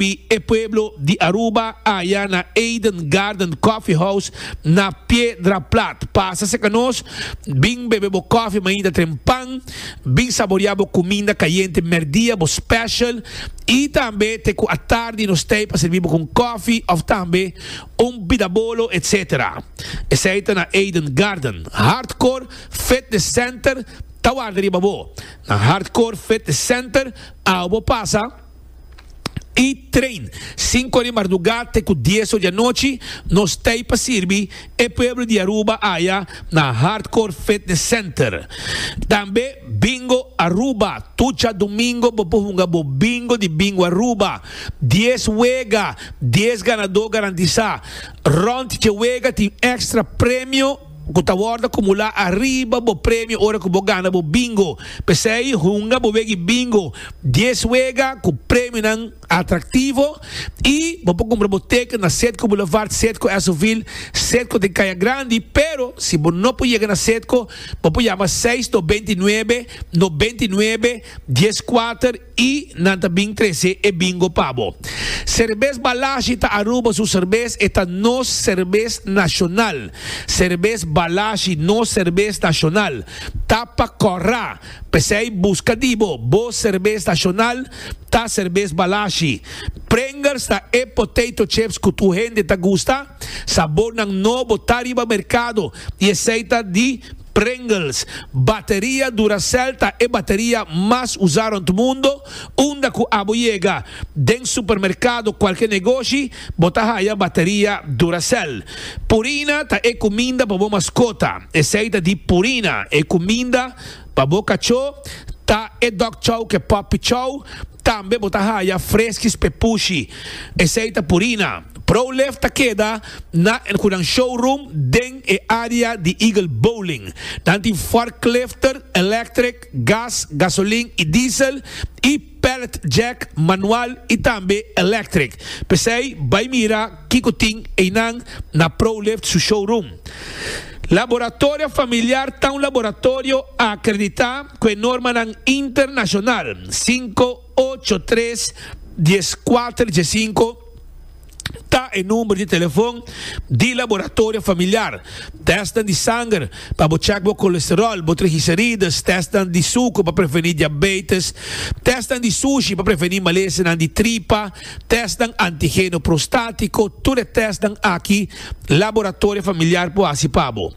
Pi e pueblo di Aruba aya na Eden Garden Coffee House na Piedra Plat. Pasa cerca nos, bin bebe bo koffie mainta trempan, bin saboria bo cuminda cayente merdia, bo special, y tambe te cu atardi nos tey pa servi bo cu un koffie of tambe un bidabolo etc. Esey ta na Eden Garden. Hardcore Fitness Center ta warda riba bo. Na Hardcore Fitness Center, awe bo pasa. i train sinku ora di mardugá te ku dies ora di anochi nos t'ei pa sirbi e pueblo di Aruba aya na Hardcore Fitness Center. Tambe Bingo Aruba, tur dja domingo bo por hunga bo bingo di Bingo Aruba. Dies wega, dies ganadó garantisá. Rònt dje wega tin èkstra premio. ku ta wòrdu akumulá ariba bo premio ora ku bo gana bo bingo. P'esei hunga bo wega e bingo dies wega ku premionan atraktivo i bo por kumpra bo teken na Sedco Boulevard, Sedco Esovil, Sedco den Kaya Grandi. Pero si bo no por yega na Sedco, bo por yama seis no beinti nuebe no beinti nuebe dies kuater. I nan ta bin trese e bingo pa bo. Serbes Balashi ta Aruba su serbes, e ta nos serbes nashonal. Serbes Balashi, nos serbes nashonal, ta pa kòrá. P'esei buska di bo, bo serbes nashonal ta serbes Balashi. Pringles ta e potato chips ku tur hende ta gusta. Sabornan nobo ta riba merkado i esei ta di. Pringles, Bateria Duracell ta e bateria mas usá rònt mundo, unda ku abo yega den supermerkado kualke negoshi bo ta haya bateria Duracell. Purina ta e kuminda pa bo maskota, esei ta di Purina, e kuminda pa bo kachó ta e Dog Chow ke Puppy Chow, Tambe bo ta haya freskis p'e pushi. Esei ta Purina. ProLift ta keda na e kunan showroom den e área di Eagle Bowling. Nan tin forklifter, electric, gas, gasolin i diesel, i pallet jack, manual i tambe electric. P'esei bai mira. Kiko tin einan na ProLift su showroom? Laboratorio Familiar ta un laboratorio akreditá ku e normanan internashonal sinku, ocho, tres, dies, kuater, dies, sinku ta e number di telefon di Laboratorio Familiar. Tèstnan di sanger pa bo chèk bo kolesteròl, bo trigiserides, tèstnan di suker pa prevení diabeites, tèstnan di sushi pa prevení malesenan di tripa, tèstnan antigeno prostátiko, tur e tèstnan aki Laboratorio Familiar por hasi pa bo.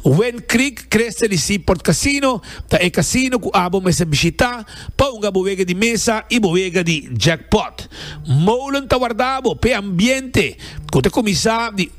Wind Creek Creste di Sea Port Casino ta e casino cu abo mester bishita pa hunga bo wega di mesa y bo wega di jackpot. Molen ta warda bo p'e ambiente cu ta cuminsa di.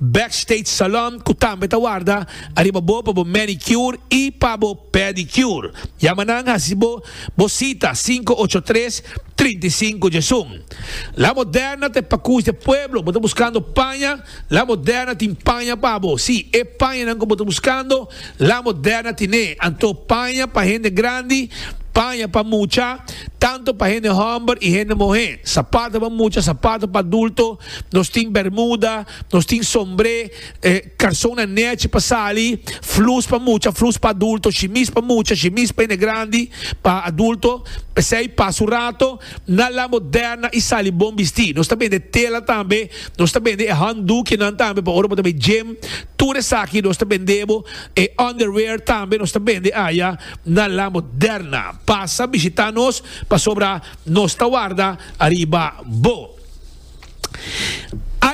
Backstage Salon cu tambe ta warda ariba bo pa bo manicure y pa bo pedicure. Yama nan haci bo bo cita cinco ocho tres, trinta y cinco djesun. La Moderna ta e pacush de pueblo. Bo ta buscando paña? La Moderna tin paña pa bo. Sí, e pañanan cu bo ta buscando, La Moderna tin'e. Anto paña pa hende grandi, paña pa mucha, tanto pa hende homber y hende muhe. Sapato pa mucha, sapato pa adulto, nos tin bermuda, nos tin sombré, eh, karson na nechi pa sali, flus pa mucha, flus pa adulto, shimis pa mucha, shimis pa hende grandi, pa adulto, p'esei pasa un rato na La Moderna i sali bon bisti. Nos ta bende tela tambe, nos ta bende e handdoekjenan tambe pa ora bo ta bay gym, tur esaki nos ta bend'e bo, e underwear tambe nos ta bende aya na La Moderna. Pasa bishita nos pasobra nos ta warda ariba bo.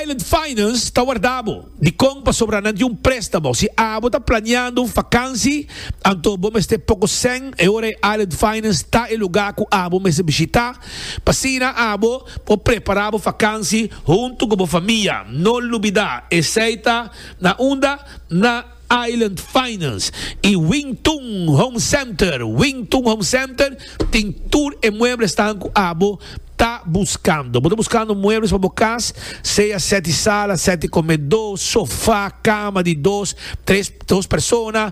Island Finance ta warda bo di kon pasobra nan di un préstamo. Si abo ta planeando un fakansi, anto bo mester poko sèn e ora e Island Finance ta e lugá ku abo mester bishitá. P'asina abo por prepará bo fakansi huntu ku bo famia. No lubidá, esei ta na unda na. Island Finance y Wing Tun Home Center, Wing Tun Home Center tin tur e muebles tan cu abo ta buscando. Bo ta buscando muebles pa bo cas, sea sete sala, sete comedo, sofa, cama di dos, tres, dos persona,